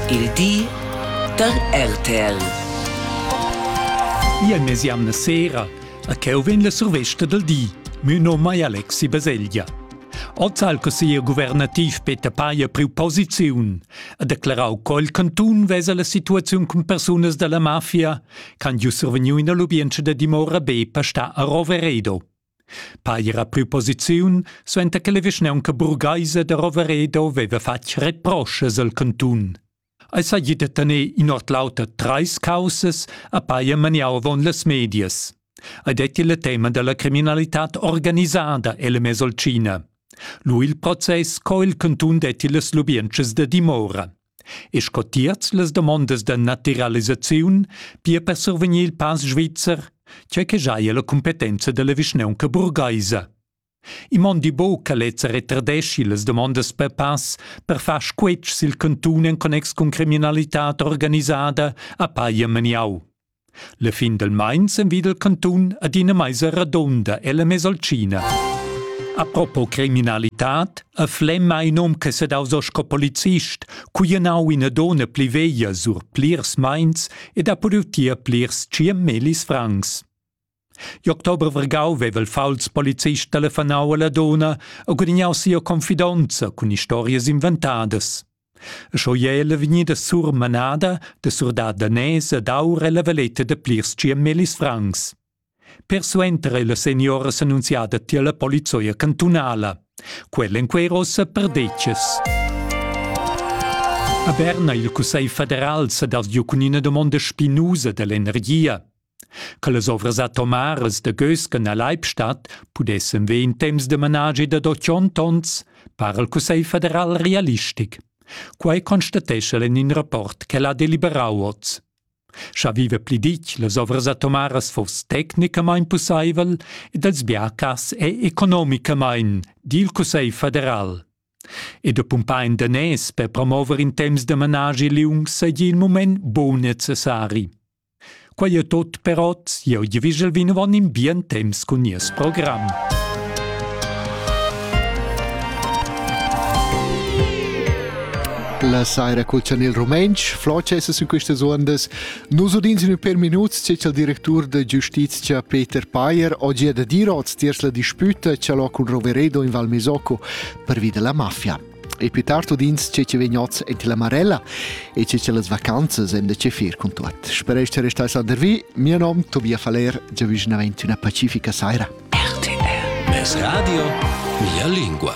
Il di dal RTL. Ia nes jamna sera, a cheu vegn la survesta del di. Mü nom ei Alexi Baselgia. Oz ha il consiglier guvernativ Peter Payer priu posiziun e declarau col cantun vesa la situaziun cun persunas dalla mafia, can ju survegniu in allubientscha da dimora B per sta a Roveredo. Paira preposiziun suenter che la vischnaunca burgheisa da Roveredo veva fatg reproschas al cantun. Ei seigi da tener in ord l'auter treis caussas a paia maniau avon las medias. Ei detti il tema dalla criminalitad organisada ella Mesolcina. Lu il process co il cantun detti las lubientschas da dimora. e sco tiers las damondas da natiralisaziun pia per survegnir il pass svizzer, tgei che giaja la cumpetenza dalla vischnaunca burgheisa. I mondi buc che lezza retardeschi las damondas per pass per far squetsch sil cantun en connex cun criminalitad organisada a paglia maniau. La fin del meins envida il cantun ad ina meisa radonda ella Mesolcina. Apropos criminalitad, a Flem ha in hom che sedaus o sco polizist, cui ha nau ina dona pli veglia sur plirs meins ed ha podiu tier plirs tschient melis francs. I'october vargau veva il fauls polizist telefonau alla donna e gudignau sia confidonza cun historias inventadas. Scho ella vegnida surmanada de surdat danès ed aur la valeta de plirs ciamelis francs. Persuenter è la seniora s'annunziada tier la polizzoia cantunala. Quella in quei rossa perdeces. A Berna il Cussegl federal sa dal giu cun ina domanda spinusa dall'energia. Quellas ovras atomaras da Gösken a Leibstadt pudessen ver in temps de managi dad otschont onns, para il Cussegl federal realistic. Quei constatescha el en in rapport che l'ha deliberau oz. Scha vive pli ditg, las ovras atomaras foss tecnicamain pussaivel ed els bia cas è economicamain, di il Cussegl federal. E da pumpar in danès per promover in temps de managi liung seigi il moment bon necessari. Quei è tot per oz. Eu giavigel vinavon in bien temps cun nies program. La saira col chanel rumentsch, Floces sin questas ondas. Nus udins in per minuts c'è il direttur da giustizia Peter Payer oggi da dir oz tiers la disputa ce l'ho cun Roveredo in Val Misocco per via della mafia. E più tard udins che che vegn oz en la Marella e che che las vacanzas en da che fer con tuot. Spero che restai sandervi. Mio nom Tobias Faller, già vicinamente una pacifica saira. RTL. Es Radio, mia lingua.